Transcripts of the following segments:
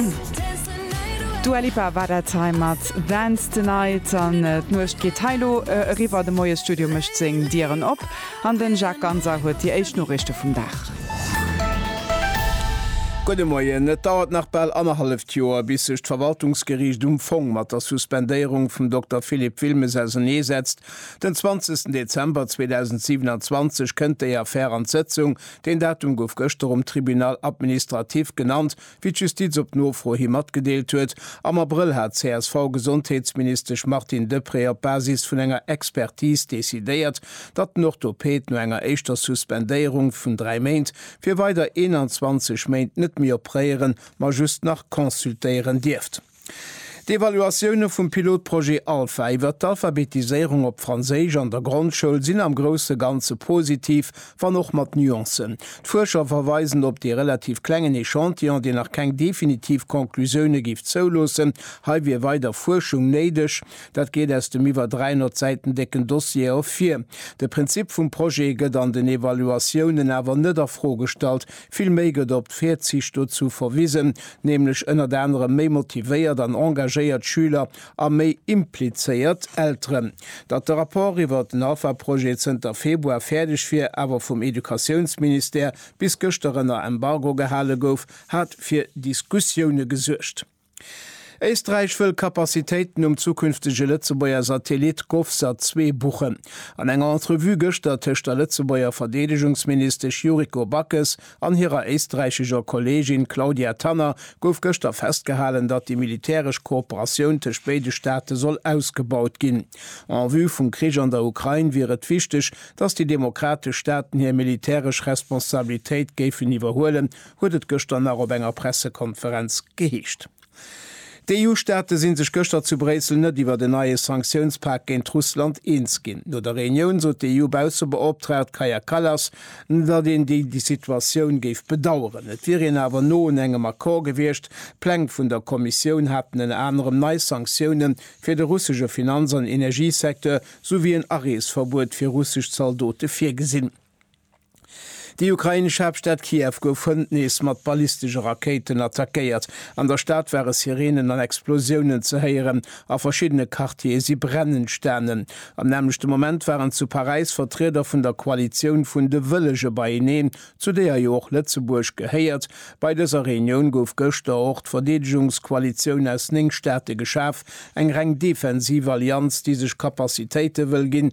D'Dua Lipa war dat hei mat Dance the Night an d'Nuecht geet hei elo eriwwer. De Moiesstudio mécht seng Dieren op an den Jacques Ganser huet déi éischt Noriichte vum Dag. Gudde Moien. Et dauert nach bal annerhalleft Joer, bis sech d'Verwaltungsgeriicht um Fong mat der Suspendéierung vum Dokter Philippe Wilmes ausenee setzt. Den 20 Dezember 2027 kënnt déi Affär an d'Sëtzung. Deen Datum gouf gëschter um Tribunal administratif genannt, Wéi d'Justiz op Nofro hi matgedeelt huet, am Abrëll hat d'CSV-Gesondheetsministesch Martine Deprez op Basis vun enger Expertis decidéiert, datt den Orthopäd no enger éischter Suspendéierung vun dräi Méint fir weider 21 Méint net méi opréieren, ma just nach consultéieren dierft. D'Evaluatioune vum Pilotprojet Alpha iwwert d'Alphabetiséierung op Franséisch an der Grondschoul sinn am grousse Ganze positiv, wann och mat Nuancen. D'Fuerscher verweisen op dee relativ klengen Echantillon, deen nach keng definitiv Conclusioune géif zouloossen. Hei wier weider Fuerschung néideg. Dat geet aus dem iwwer 300 Säiten décken Dossier ervir. De Prinzip vum Projet gëtt an den Evaluatiounen awer net a Fro gestallt, Villméi gëtt op d'Virzicht dozu verwisen, nämlech ënnert anerem méi motivéiert an engagéiert Schüler a méi implizéiert Elteren. Datt de Rapport iwwert den AFA-Projet zënter Februar fäerdeg wier, awer vum Educatiounsministère bis gëschter ënner Embargo gehale gouf, hat fir Diskussioune gesuergt. Éisträich wëll Kapazitéiten um zukünftege Lëtzebuerger Satellit Govsat 2 buchen. An enger Entrevue gëschter tëscht der Lëtzebuerger Verdeedegungsministesch Yuriko Backes an hirer éisträichescher Kolleegin Claudia Tanner gouf gëschter festgehalen, datt déi militäresch Kooperatioun tëscht béide Staate soll ausgebaut ginn. En vue vum Krich an der Ukrain wier et wichteg, datt déi demokratesch Staaten hir militäresch Responsabilitéit géifen iwwerhuelen, huet et gëschter nach op enger Pressekonferenz geheescht. D'EU-Staate si sech gëschter zu Bréissel net iwwert en neie Sanktiounspak géint Russland eens ginn. No der Reunioun sot d'EU-Baussebeoptraagt Kaja Kallas, datt een déi Situatioun géif bedaueren. Et wier een awer no un engem Accord gewiescht. D'Pläng vun der Kommissioun haten ënner anerem nei Sanktioune fir de russesche Finanz an Energiesecteur souwéi en Areesverbuet fir russesch Zaldote virgesinn. Déi ukrainesch Haaptstad Kiew gouf hënt nees mat ballistesche Rakéiten attackéiert. An der Stad ware Sireenen an Explosiounen ze héieren a verschiddene Quartiere si brennend stanen. Am nämmlechte Moment waren zu Paräis Vertrieder vun der Koalitioun vun de Wëllege beieneen, zu deeër jo och Lëtzebuerg gehéiert. Bei dëser Reunioun gouf gëschter och d'Verdeedegungskoalitioun aus néng Staate geschaf, eng reng defensiv Allianz, déi sech Capacitéite wëll ginn,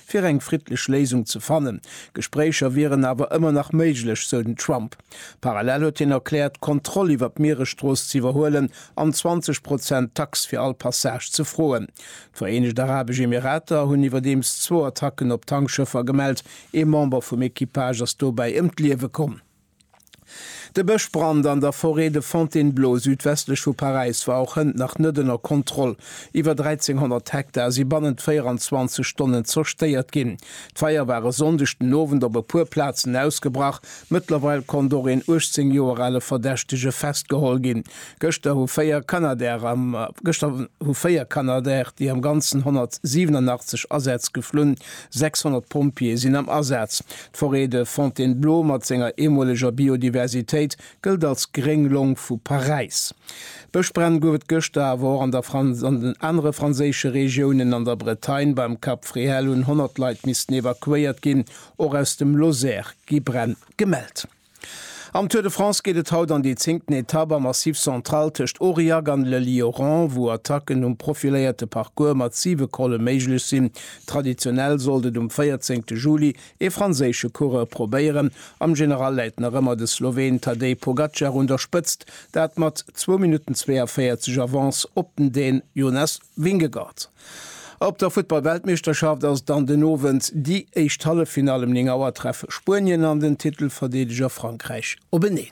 fir eng friddlech Léisung ze fannen. Gespréicher wieren awer ëmmer nach méiglech, sou den Trump. Parallel huet hien erkläert, d'Kontroll iwwer d'Mieresstrooss ze iwwerhuelen an 20 Prozent Tax fir all Passage ze froen. D'Vereenegt Arabesch Emirater hunn iwwerdeems zwou Attacken op Tankschëffer gemellt. Ee Member vum Equipage ass dobäi ëm d'Liewe komm. De Bëschbrand an der Forêt de Fontainebleau südwestlech vu Paräis war och hënt nach net ënner Kontroll. Iwwer 1.300 Hektar si bannent 24 Stonnen zerstéiert ginn. D'Feier war e Sonndeg den Owend op e puer Plazen ausgebrach. Mëttlerweil konnt och een 18 Joer ale Verdächtege festgeholl ginn. Gëschter hu véier Canadair, déi am Ganzen 187 Asätz geflunn, 600 Pompjeeë sinn am Asaz. D'Forêt de Fontainebleau mat senger eemoleger Biodiversitéit gëllt als gréng Long vu Paräis. Bëschbränn gouf et gëschter awer och an der Franz an den anere franséische Regiounen. An der Bretagne beim Cap Fréhel hunn 100 Leit missten evakuéiert ginn. Och aus dem Lozère gi Bränn gemellt. Am Tour de France geet et haut an déi zéngten Etapp am Massif Central tëscht Aurillac an Le Lioran, wou Attacken um profiléierte Parcours mat siwe Colle méiglech sinn. Traditionell sollt et um véierzéngte Juli ee franséische Coureur probéieren. Am General läit nach ëmmer de Sloween Tadej Pogacar un der Spëtzt, dat mat zwou Minutten 42 Avance op den Dän Jonas Vingegaard. Op der Futtball-Weltmeeschterschaft ass dann den Owend déi éischt Halleffinall. Em 9 Auer treffe Spuenien an den Titelverdeedeger Frankräich openeen.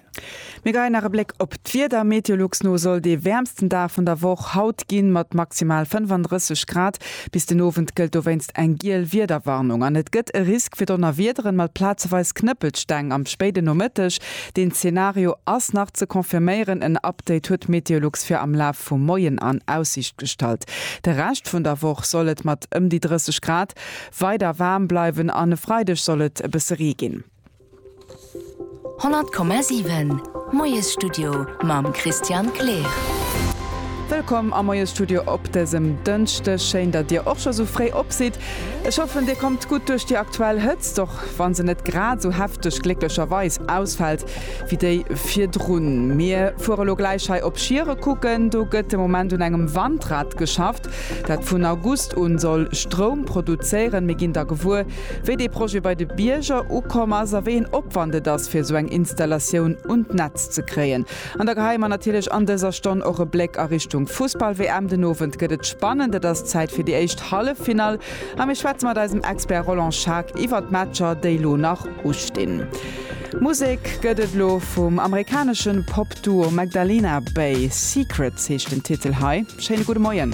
Mir geien nach e Bléck op d'Wieder. Meteolux no soll dee wäermsten Dag vun der Woch haut ginn, mat maximal 35 Grad. Bis den Owend gëllt dowéinst eng giel Wiederwarnung an et gëtt e Risk fir Donnerwiederen mat plazeweis Knëppelsteng am spéiden Nomëtteg. Deen Zeenario ass nach ze confirméieren. En Update huet d'Meteolux fir am Laf vum Moien an Aussiicht gestallt. De Rescht vun der Woch soll et mat ëm déi 30 Grad weider waarm bleiwen an e Freideg soll et e bësse Ree ginn. 100,7 Moiesstudio mam Christian Kleer. Wëllkomm am Moiesstudio op dësem Dënschdeg. Schéin, datt Dir och scho sou fréi op sidd. Ech hoffen dir kommt gutt duerch déi aktuell Hëtzt, och wann se net grad esou hefteg, glécklecherweis, ausfält wéi déi virdrun. Mir fuere lo gläich hei op Schiere kucken, do gëtt de Moment un engem Wandrad geschafft, dat vun August un soll Stroum produzéieren. Mir ginn da gewuer wéi dee Projet bei de Bierger ukomm ass a wéi een Opwand et ass fir esou eng Installatioun un d'Netz ze kréien. An da geheien mer natierlech an dëser Stonn och e Bléck a Richtung Fussball-WM. Den Owend gëtt et spannend, et ass Zäit fir déi éischt Halleffinall a mir schwätze mat eisem Expert Roland Schaack iwwer d'Matcher, déi lo nach ustinn. Musek gëtt et lo vum amerikanesche Pop-Duo Magdalena Bay, Secrets heescht den Titel hei. Schéine gudde Moien.